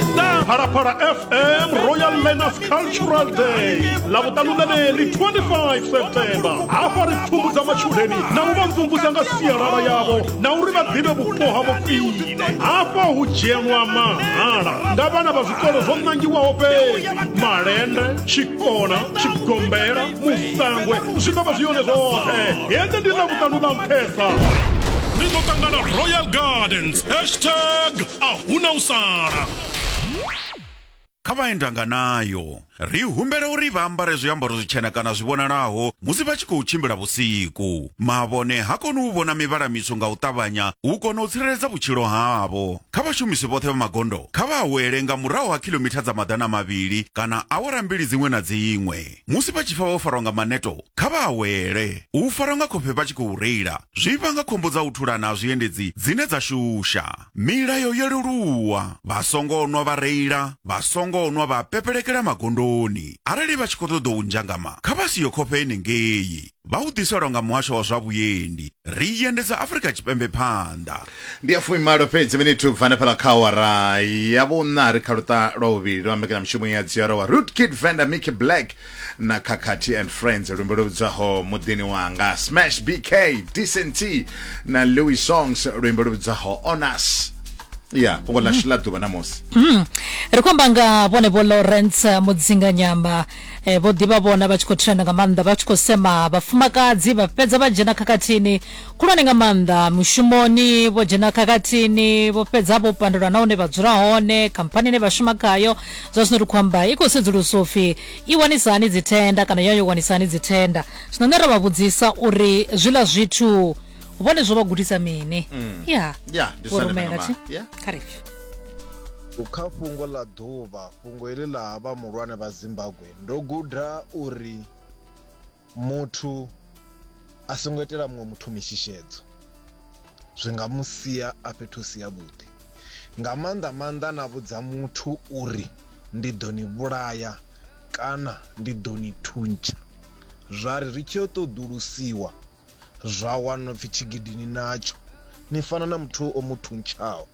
Star Phalaphala FM Royal Learners Cultural Day lavhuṱanu ḽeneḽi 25 september hafha ri pfumbudza matshudeni na u vha mvumvusa nga sialala yavho na uri vha ḓivhe vhupo havho khwine hafha hu dzhenwa mahala nga vhana vha zwikolo zwo nangiwaho fhedzi malende tshikona tshigombela musangwe zwi ḓo vha zwi yone zwoṱhe hende ndi ḽavhuṱanu ḽa nṱhesa ri ḓo ṱangana royal gardens hashtag a huna u sala kha vha endanga nayo ri humbela uri vha ambare zwiambaro zwitshena kana zwi vhonalaho musi vha tshi khou tshimbila vhusiku mavhone ha koni u vhona mivhala mitswu nga u ṱavhanya u kona u tsireledza vhutshilo havho kha vhashumisi vhoṱhe vha magondo kha vha awele nga murahu ha khilomitha dza maḓana mavhili kana awara mbili dziṅwe na dziṅwe Musi vha tshi pfa vho farwa nga maneto, kha vha awele. U farwa nga khofhe vha tshi khou reila zwi vhanga khombo dza u thulana ha zwiendedzi dzine dza shusha. Milayo yo leluwa, Vha songo nwa vha reila, vha songo nwa vha pepelekela magondoni. Arali vha tshi khou ṱoḓa u nzhangama, kha vha siyo khofhe henengei. vha u ḓiselwa nga muhasho wa zwa vhuendi ri i endedza afurika tshipembe phanḓa ndi ya fumimalo fhedzi miniti u bva hanefhala kha awara ya vhuna ri kha luṱa lwa vhuvhili lwa mbekanyamushumo ya dziora wa root kid venda mickey black na khakhathi and friends luimbo lwo vhidzaho muḓini wanga smash bk dcnt na louis songs luimbo lwo vhidzaho onas ya fhungo ḽashu ḽa ḓuvha namusi ri khou amba nga vhone vho lawrence mudzinganyamba E, vho ḓi vha vhona vha tshi khou thirana nga maanḓa vha tshi khou sema vhafumakadzi, vha fhedza vha dzhena khakhathini khulwane nga maanḓa mushumoni. Vho dzhena khakhathini, vho fhedza vho pandulwa na hune vha dzula hone. Khamphani ine vha shuma khayo zwa zwino ri khou amba i khou sedzulusa u pfi i wanisa hani dzithenda kana yo yo wanisa hani dzithenda. Zwino nṋe ra vha vhudzisa uri zwiḽa zwithu vhone zwo vha gudisa mini. Ya, Ya, ndi vho zwa ndeme nga rumela thi maanḓa. Ya. kha ri pfhe. Kha fhungo ḽa ḓuvha, Fhungo heḽi ḽa vha muhulwane vha Zimbagwe ndo guda uri muthu a songo itela muṅwe muthu mishishedzo zwi nga mu sia a fhethu hu si ya vhuḓi nga maanḓa maanḓa na vhudza muthu uri ndi ḓo ni vhulaya kana ndi ḓo ni thuntsha zwa ri ri tshi yo ṱoḓulusiwa zwa wana upfhi tshigidini natsho ni fana na muthu o mu thuntshaho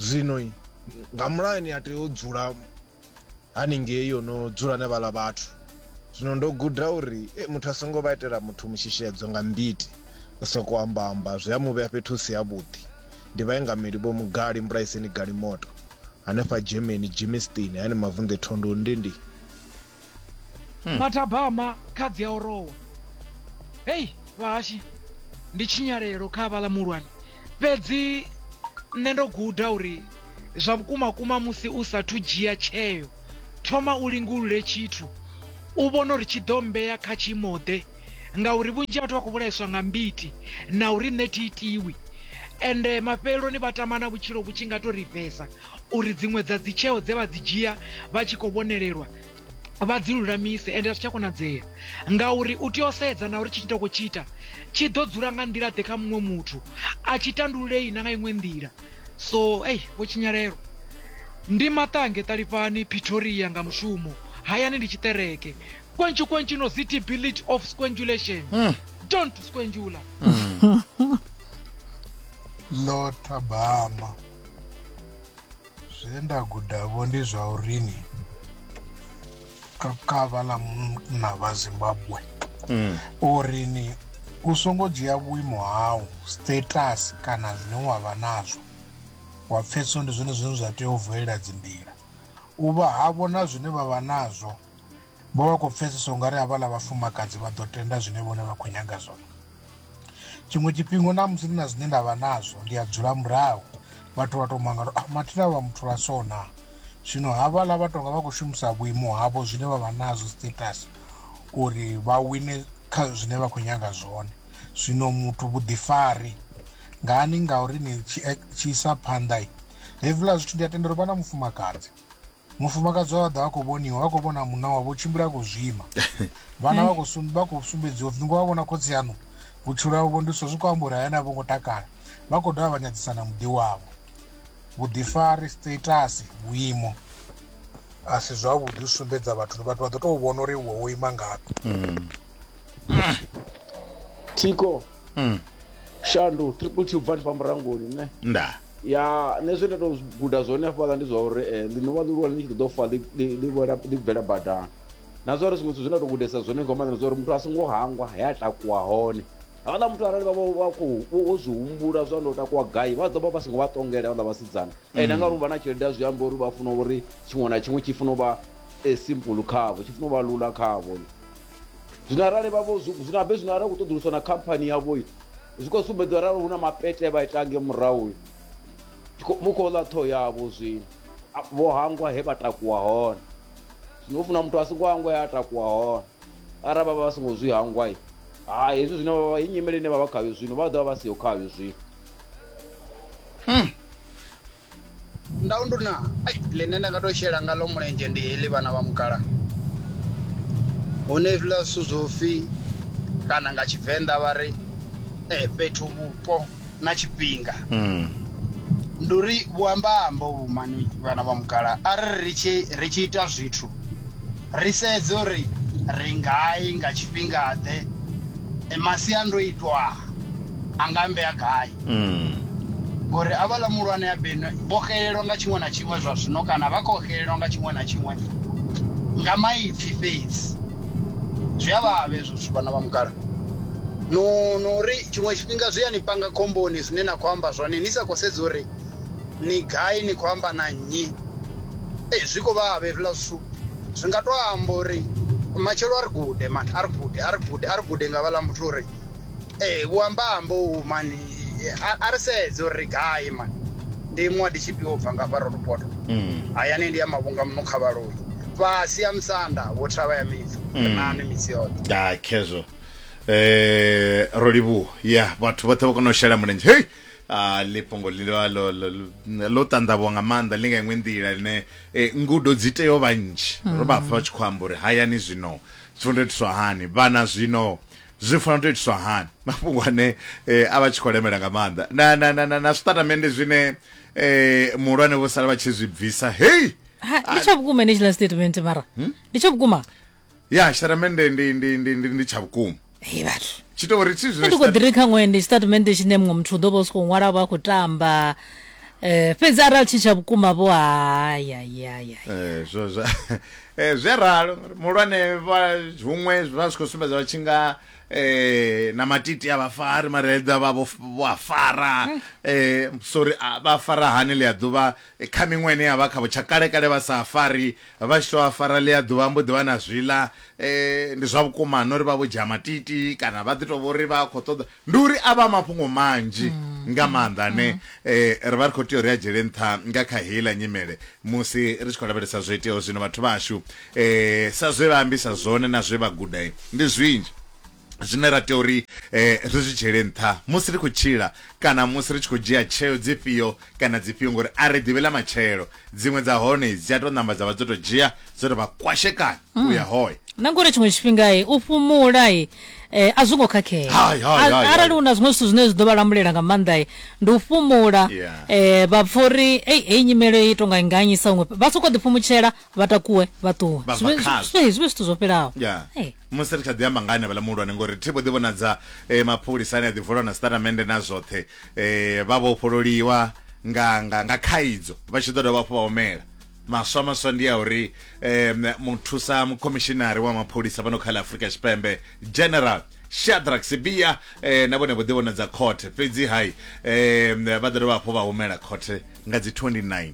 zwino nga mulayo ni a tea u dzula haningei yo no dzula ne vhala vhathu zwino ndo guda uri e, muthu a songo vha itela muthu mushishedzo nga mbiti u soko amba amba zwi a mu vhea fhethu si ya vhuḓi ndi vha engameli vho mugali mbulaiseni gali moto hanefha Germany Jimistin hani mavunḓe thondoni ndi ndi hmm. mathabama kha dzi a orowa hei vhahashi ndi tshinyalelo kha vhala muhulwane fhedzi nṋe ndo guda uri zwa vhukuma kuma musi u sathu dzhia tsheo thoma u lingulule tshithu u vhona uri tshi ḓo mbeya kha tshiimoḓe ngauri vhunzhi vhathu vha khou vhulaiswa nga mbiti na uri nṋe thi itiwi ende mafheleloni vha tama na vhutshilo vhu tshi nga to rivesa uri dziṅwe dza dzi tsheo dze vha dzi dzhia vha tshi khou vhonelelwa vha dzi lulamise ende a zwi tsha konadzea ngauri u tea u sedza na uri tshi tshi tou khou tshi ita tshi ḓo dzula nga nḓila ḓe kha muṅwe muthu a tshi tandululei na nga iṅwe nḓila so ei vho tshinyalelwa ndi maṱange ṱalifhani pretoria nga mushumo hayani ndi tshiṱereke kwentshu kwentshu no city billet of squengulation hmm. don't squengula hmm. no thabama zwe nda gudavho ndi zwa urini ka kavha ḽa munna vha zimbabwe mm. uri ni u songo dzhia vhuimo hau status kana zwine wa vha nazwo wa pfeso ndi zwone zwine zwa tea u vulela dzinḓila u vha havho na zwine vha vha nazwo Vho vha khou pfesesa ungari havhala vhafumakadzi vha ḓo tenda zwine vhone vha khou nyaga zwone. Tshiṅwe tshifhingo na musi ndi na zwine nda vha nazwo ndi a dzula murahu vhathu vha tou mangala ah, mathina vha muthu lwa so na zwino havhala vha tonga vha khou shumisa vhuimo havho zwine vha vha nazwo status uri vha wine kha zwine vha khou nyaga zwone zwino muthu vhuḓifari ngani ngauri ni tshi isa phanḓa hezwiḽa zwithu ndi a tenda uri vha na mufumakadzi Mufumakadzi wawe a ḓa a khou vhoniwa, a khou vhona munna wavho u tshimbila a khou zwima. Vhana vha khou vha khou sumbedziwa upfi ni khou vha vhona khotsi aṋu vhutshilo havho vho ndiswa, zwi khou amba uri hayani a vho ngo takala. Vha khou dovha vha nyadzisa na muḓi wavho. Vhuḓifari, status, vhuimo a si zwavhuḓi u sumbedza vhathu uri vhathu vha ḓo tou vhona uri iwe wo ima ngafhi. Thiko. Shandu, Triple T u bva hanefha murangoni nṋe. Nda. Ya nṋe zwe nda to guda zwone hafhaḽa ndi zwa uri eh, ḽiṋo vha ḽihulwane ḽi tshi ḓo fa ḽi bvela badani na zwa uri zwiṅwe zwithu zwe nda to gudesa zwone nga maanḓa zwa uri muthu a songo hangwa he a takuwa hone havhaḽa muthu arali vha vha khou vho zwi humbula zwa ndo takuwa gai vha ḓo vha vha songo vha ṱongela havhaḽa vhasidzana mm. ende ngauri u vha na tshelede a zwi amba uri vha funa uri tshiṅwe na tshiṅwe tshi funa u vha eh, simple khavho tshi funa u vha lula khavho zwino arali vha vho zwino abe zwino arali khou ṱoḓuluswa na khamphani yavhoi Zwi khou sumbedza arali hu na mapete e vha ita ngei murahu, mu khou ḽa ṱhoho yavho zwino. Vho hangwa he vha takuwa hone. Zwino hu funa muthu a songo hangwa he a takuwa hone. Arali vha vha vha songo zwi hangwa, ha, hezwi zwine vha vha, heyi nyimele ine vha vha khayo zwino, vha ḓo vha vha siho khayo zwino. Ndau nduna ḽine nda nga tou shela ngaḽo mulenzhe ndi heḽi vhana vha mukala hune hezwiḽa zwithu zwo pfhi kana nga tshivenḓa vha ri eh, fhethu vhupo na tshifhinga mm. ndi uri vhuambambo vhumani vhana vha mukala a ri ri tshi ita zwithu Ri sedze uri ri gai nga tshifhinga-ḓe, e, masiandoitwa a nga ambea gai. Ngori avhala muhulwane a Benue vho xelelwa nga tshiṅwe na tshiṅwe zwa zwino kana vha khou xelelwa nga tshiṅwe na tshiṅwe nga maipfi fhedzi. Zwi a vhavha hezwo zwithu vhana vha mukala. No no uri tshiṅwe tshifhinga zwi a ni panga khomboni zwine na khou amba zwone ni sa khou sedza uri Ni gai, ni khou amba na nnyi? Ee, zwi khou vhavha hezwiḽa zwithu. Zwi nga tou amba uri matshelo a ri gude mani, a ri gude, a ri gude, a ri gude nga havhaḽa muthu uri ee, vhuambamba uvhu mani, a ri sedze uri ri gai mani. Ndi nwa, ndi tshifhio u bva nga hafha ro no potwa. Hayani ndi ya Mavhunga muno kha Vhaloi. Fhasi ha musanda wo thavha ya miḓi, ri nani misi yoṱhe. Ha, khezwo. Ee, ro livhuwa. Ya, vhathu vhoṱhe vha kona u shela mulenzhe. Hei! a ḽi fhungo ḽi ḽo ḽo ḽo- ḽo ṱanḓavhuwa nga maanḓa ḽi nga iṅwe nḓila ḽine eh, ngudo dzi tea u vha nnzhi ro vha pfa vha tshi khou amba uri hayani zwino zwi fanela u itiswa hani vhana zwino zwi fanela u tou itiswa hani mafhungo ane eh, a vha tshi khou lemela nga maanḓa na na na na na zwiṱatamende zwine eh, muhulwane vho sala vha tshi zwi bvisa hei Ha, ndi tsha vhukuma henetshiḽa statement mara ndi tsha vhukuma ya sharamende ndi ndi ndi ndi ndi tsha vhukuma hei vhathu tshi tou ri thi nṋe zwine ndi khou tshi- ḓirikha ṅwe ndi tshitatimende tshine muṅwe muthu u ḓo vha u si khou ṅwala vha khou tamba um fhedzi arali tshi tsha vhukuma vho hayayaya Eh, zwo zwa eh, zwi a ralo muhulwane vha huṅwe vha zwi khou sumbedza vha tshi nga eh, na matiti a vhafari maredza vha vho f- vho a fara eh, sorry a- vha fara hani ḽi a ḓuvha Kha miṅwe ine ya vha khavho tsha kalekale vha sa fari, vha tshi tou a fara ḽi a ḓuvha ha mbo ḓi vha na zwiḽa. Ndi zwa vhukuma na uri vha vho dzhia matiti kana vha ḓi tou vhori vha khou ṱoḓa, ndi uri a vha a mafhungo manzhi nga maanḓa ane ri vha ri khou tea uri a dzhiele nṱha nga kha heiḽa nyimele musi ri tshi khou lavhelesa zwo iteaho zwino. Vhathu vha hashu sa zwe vha ambisa zwone na zwe vha guda ndi zwinzhi. zwine ra tea uri ri zwi dzhiele nṱha musi ri khou tshila kana musi ri tshi khou dzhia tsheo dzifhio kana dzifhio ngori a ri ḓivhi ḽa matshelo dziṅwe dza hone dzi a tou ṋamba dza vha dzo tou dzhia dzo tou vha kwashekana u ya hoye na ngori tshiṅwe tshifhinga e u fhumula e eh, a zwo ngo khakhea Hai, hai, A- hai, arali hai. hu na zwiṅwe zwithu zwine zwi ḓo vha lamulela nga maanḓa e ndi u fhumula Yeah. eh vha pfha uri ei hei nyimelo i tonga i nganyisa huṅwe vha sokou ḓifhumutshela vha takuwe vha ṱuwe Vha bva Zwi vhe- khazwo. zwi- ee, zwi vhe zwithu zwo fhelaho ya Ee. musi ri tsha ḓi amba nga hanevhala muhulwane ngori thi vho ḓi vhonadza eh, mapholisa ane a ḓi volwa na sitamende na zwoṱhe eh, vha vhofhololiwa nga, nga, nga khaidzo vha tshi ḓo dovha hafhu vha humela maswa maswa ndi ya uri eh, muthusa mukhomishinari wa mapholisa fhano kha ḽa afurika tshipembe general shadrack sibia eh, na vhone vho ḓi vhonadza khothe fhedzi hai eh, vha ḓo dovha hafhu vha humela khothe nga dzi 29